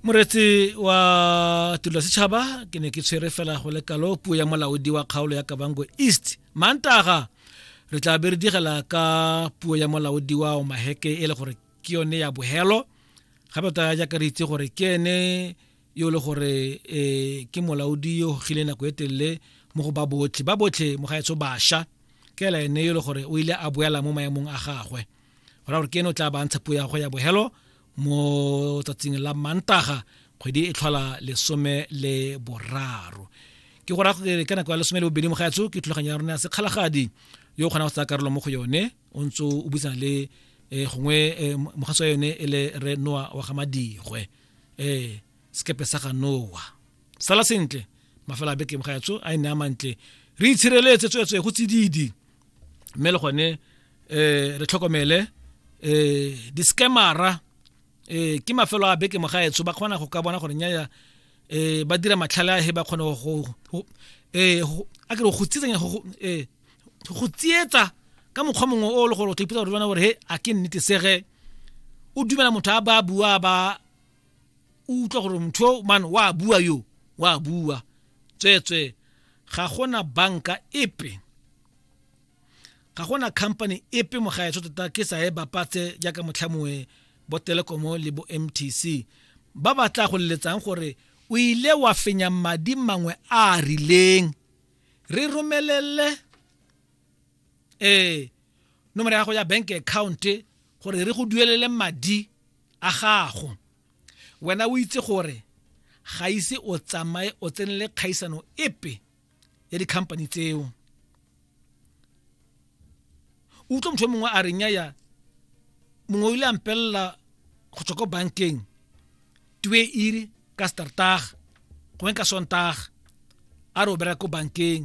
moretsi wa tulo ya setšhaba ke ne ke tshwere fela go le kalo puo ya molaodi wa kgaolo ya kabango east mantaga re tla be re digela ka puo ya molaodi wa o maheke e le gore ke yone ya bohelo gape tota jaaka re itse gore ke ene yo le gore um ke molaodi yo gogile nako e telele mo go ba botlhe ba botlhe mo gaetsho basha ke ela ene yo le gore o ile a boela mo maemong a gagwe go ra gore ke ene o tla ba ntsha puo ya go ya bohelo mo tsatsing la mantaga kgwedi e tlhola lesome le boraro ke go raya ka nako ya lesome le bobedi mogaetso ke thulaganyo ya rona ya sekgalagadi yo o kgonang go tsaya karolo mo go yone o ntse o buisana le um gongwe um mogatso wa yone e le re noa wa ga madigwe um sekepe sa ga noa sala sentle mafelo a bekeng ga yatso a e ne a mantle re itshireletse tswetswe go tsididi mme le gone um re tlhokomele um discamera um ke mafelo a beke mogaetso ba kgona go ka bona gore nyaya um ba dira matlhale a he ba kgone go um a kere go gotsitsanya um go tsietsa ka mokgwa mongwe o le gore o tla ipotsa gore bana gore he a ke nnete sege o dumela motho a ba bua ba utlwa gore motho man wa bua yo wa bua tsweetswee ga gona banka epe ga gona company epe mogaetsho tota ke sa e bapatse jaaka motlhamoe bo telekomo le bo mtc ba batla go leletsang gore o ile wa fenya madi mangwe a a rileng re romelele eh nomoro ya go ya bank account gore re go duelele madi a gago wena o itse gore ga ise o tsamaye o tsenele kgaisano epe ya di-company tseo utlwa motho mongwe a re nyaya mongwe o ile a mpelela go tswa ko bankeng tue iri ka startaga gongwe ka sontaga a re o bereka ko bankeng